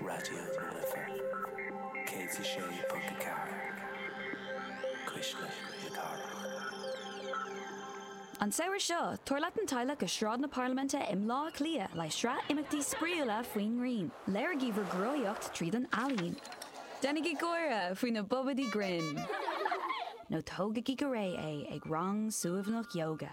Raidió na Life 106.4, Cuisle na Cathrach. An samhradh seo, tabhair leat an teaghlach go Sráid na Parlaiminte i mBleá Cliath le sraith imeachtaí spraíúla faoin ngrian. Léirigí bhur gcruthaitheacht tríd an ealaín. Déanaigí gáire faoi na bobaidí grinn. Nó tógaigí go réidh é ag rang suaimhneach ióga.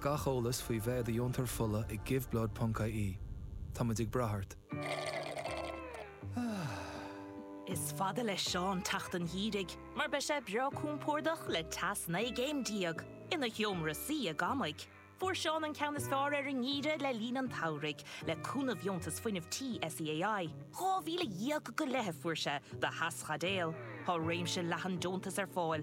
Gach eolas faoi bheith i do dheontóir fola ag giveblood.ie. Táimid ag brath ort. Is fada le Seán teacht an gheimhridh mar beidh sé breá compordach le teas 19 gcéim ina sheomra suí i gCamaigh. Fuair Seán an ceann is fearr ar an ngeimhreadh le linn an tsamhraidh le cúnamh Dheontas Fuinnimh Tí SEAI. €12,000 go leith a fuair sé do theaschaidéal. Tá réimse leathan deontas ar fáil,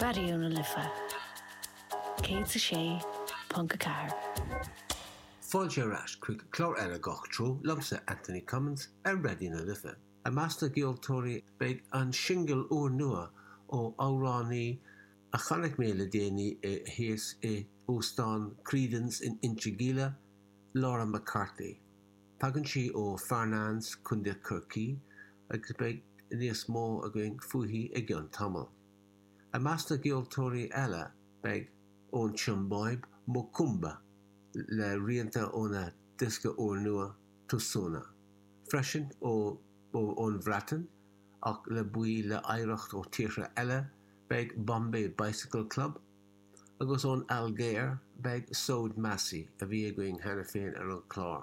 Raidió na Life 106.4. Fáilte ar ais chuig clár eile Gach Treo liomsa Anthony Cummins ar Raidió na Life. I measc na gceoltóirí beidh an singil úrnua ó amhránaí a chonaic mé le déanaí thíos i óstán Creedon's in Inchigeelagh, Laura McCarthy. Tagann sí ó Farnanes, Contae Chorcaí, agus beidh níos mó againn fúithi i gceann tamaill. I measc na gceoltóirí eile beidh ón tSiombáib, Mokoomba, le rianta óna diosca úrnua, Tusona. Freisin ón Bhreatain, ach le baill le hoidhreacht ó tíortha eile, beidh Bombay Bicycle Club, agus ón Ailgéir beidh Souad Massi, a bhí againn cheana féin ar an chlár,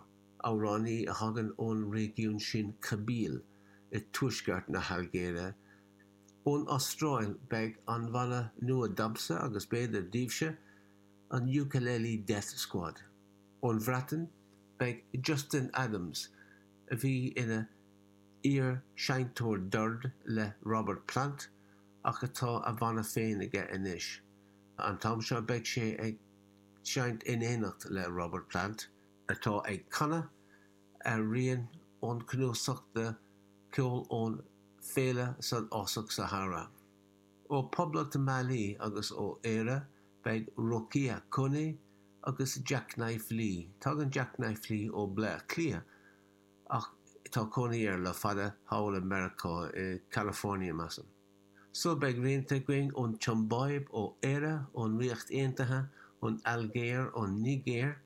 amhránaí a thagann ón réigiún sin Kabylie i dtuaisceart na hAilgéire. Ón Astráil beidh an bhanna nua domsa agus b'fhéidir daoibhse, an Ukulele Death Squad. Ón Bhreatain beidh Justin Adams, a bhí ina iar-seinnteoir doird le Robert Plant, ach atá a bhanna féin aige anois. An t-am seo beidh sé ag seinnt in éineacht le Robert Plant, atá ag canadh ar rian ón cnuasach de cheol ón bhféile san fhásach Sahara. Ó Phoblacht Mhailí agus ó Éire beidh Rokia Koné agus Jacknife Lee. Tagann Jacknife Lee ó Bhleá Cliath ach tá cónaí air le fada thall i Meiriceá, i gCalifornia, measaim. So beidh rianta againn ón tSiombáib, ó Éire, ón Ríocht Aontaithe, ón Ailgéir, ón Nigéir,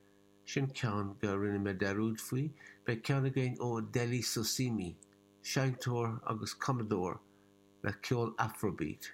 sin ceann go rinne mé dearúd faoi, beidh ceann againn ó Dele Sosimi, seinnteoir agus cumadóir le ceol afrobeat,